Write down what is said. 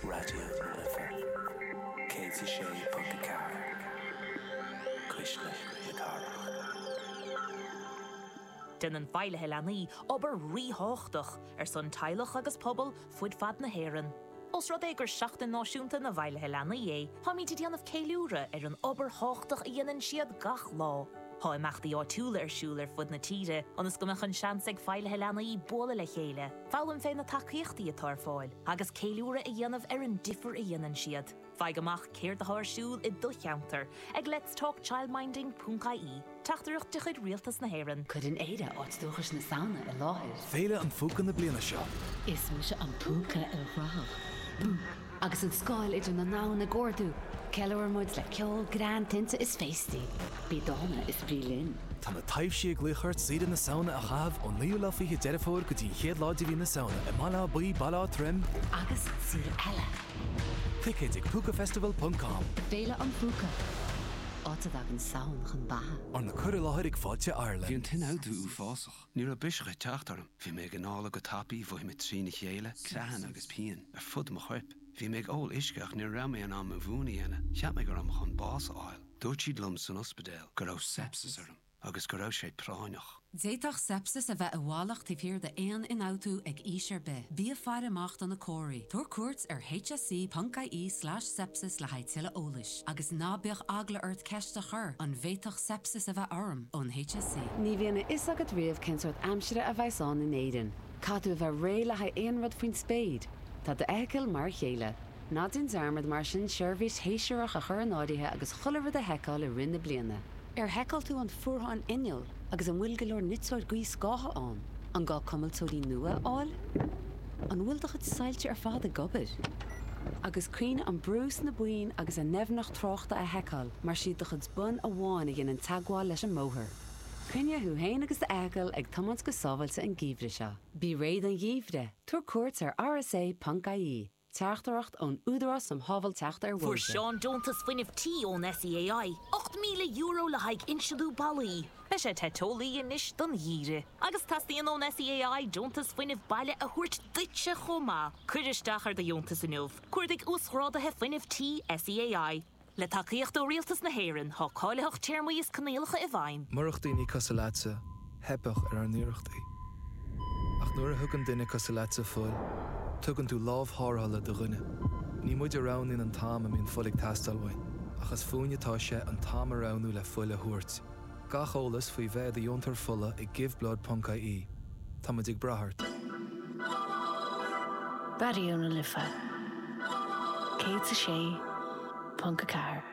Raidió na Life 106.4 Cuisle na Cathrach. Déanann Feighlithe Leanaí obair ríthábhachtach ar son teaghlach agus pobal fud fad na hÉireann. Ós rud é gur Seachtain Náisiúnta na bhFeighlithe Leanaí é, táimid ag déanamh ceiliúrtha ar an obair thábhachtach a dhéanann siad gach lá. Tá imeachtaí áitiúla ar siúl ar fud na tíre ionas go mbeadh an seans ag Feighlithe Leanaí bualadh le chéile, foghlaim faoi na tacaíochtaí atá ar fáil agus ceiliúradh a dhéanamh ar an difear a dhéanann siad. Faigh amach céard atá ar siúl i do cheantar ag lets talk childminding ponc ie, teachtaireacht de chuid Rialtas na hÉireann. Cuireann Éire áit dúchais na Samhna i láthair. Féile an Phúca na bliana seo. Is mise an púca ilchruthach. Agus an scáil idir na ndomhan ag ardú, ceiliúraimid le ceol, greann, tinte is féastaí. Bí dána is bí linn! Tá na taibhsí ag glaoch ort deireadh na Samhna a chaitheamh ón naoú lá fiche Deireadh Fómhair go dtí an chéad lá de mhí na Samhna i mBaile Átha Buí, Baile Átha Troim, agus araile! Ticéid ag Púcafestival ponc com. Féile an Phúca, áit a dtagann Samhain chun beatha. Arna cur i láthair ag Fáilte Ireland. Bhí an t-ionfhabhtú uafásach. Ní raibh biseach ag teacht orm. Bhí mé ag análú go tapa, bhí mé trína chéile, creathanna agus pian ar fud mo choirp. Bhí mé ag ól uisce ach ní raibh mé in ann mo mhún a dhéanamh, cheap mé go raibh mé chun bás a fháil. Dúirt siad liom san ospidéal go raibh sepsis orm agus go raibh sé práinneach. D'fhéadfadh sepsis a bheith i bhfolach taobh thiar d'aon ionfhabhtú ag aois ar bith. Bí ag faire amach do na comharthaí. Tabhair cuairt ar hse.ie/sepsis le haghaidh tuilleadh eolais agus ná bíodh eagla ort ceist a chur, an bhféadfadh sepsis a bheith orm ón HSE. Ní bhíonn a fhios agat riamh cén sórt aimsire a bheas ann in Éirinn. Caithfidh tú a bheith réidh le haghaidh aon rud faoin spéir. Tá d'fheithicil mar a chéile. Ná déan dearmad mar sin seirbhís shéasúrach a chur in áirithe agus chuile rud a sheiceáil i rith na bliana. Ar sheiceáil tú an fuarthán innill agus an bhfuil go leor niteoir gaothscátha ann? An gá cuimilteoirí nua a fháil? An bhfuil do chuid soilse ar fad ag obair? Agus cuimhnigh an brú sna boinn agus a ndoimhneacht tráchta a sheiceáil mar is iad do chuid bonn amháin a dhéanann teagmháil leis an mbóthar. Coinnigh thú féin agus d'fheithicil ag tiomáint go sábháilte an geimhreadh seo. Bí réidh don gheimhreadh, tabhair cuairt ar rsa.ie, Teachtaireacht ón Údarás um Shábháilteacht ar Bhóithre. Fuair Seán deontas fuinnimh tí ón SEAI, €8,000 le haghaidh insliú ballaí. Beidh sé te teolaí anois don gheimhreadh agus teastaíonn ón SEAI deontas fuinnimh baile a thabhairt duitse chomh maith. Cuir isteach ar do dheontas inniu. Cuardaigh Uasghrádaithe Fuinnimh Tí, SEAI. Le tacaíocht ó Rialtas na hÉireann, tá cáilitheacht téarmaí is coinníollacha i bhfeidhm. Murach daoine cosúil leatsa, theipfeadh ar ár n-iarrachtaí. Ach nuair a thugann duine cosúil leatsa fuil, tugann tú lámh tharrthála do dhuine. Ní muid a roghnaíonn an t-am a mbíonn fuil ag teastáil uainn, ach is fúinn atá sé an t-am a roghnú le fuil a thabhairt. Gach eolas faoi bheith i do dheontóir fola ag giveBlood.ie. Táimid ag brath ort. Raidió na Life 106.4.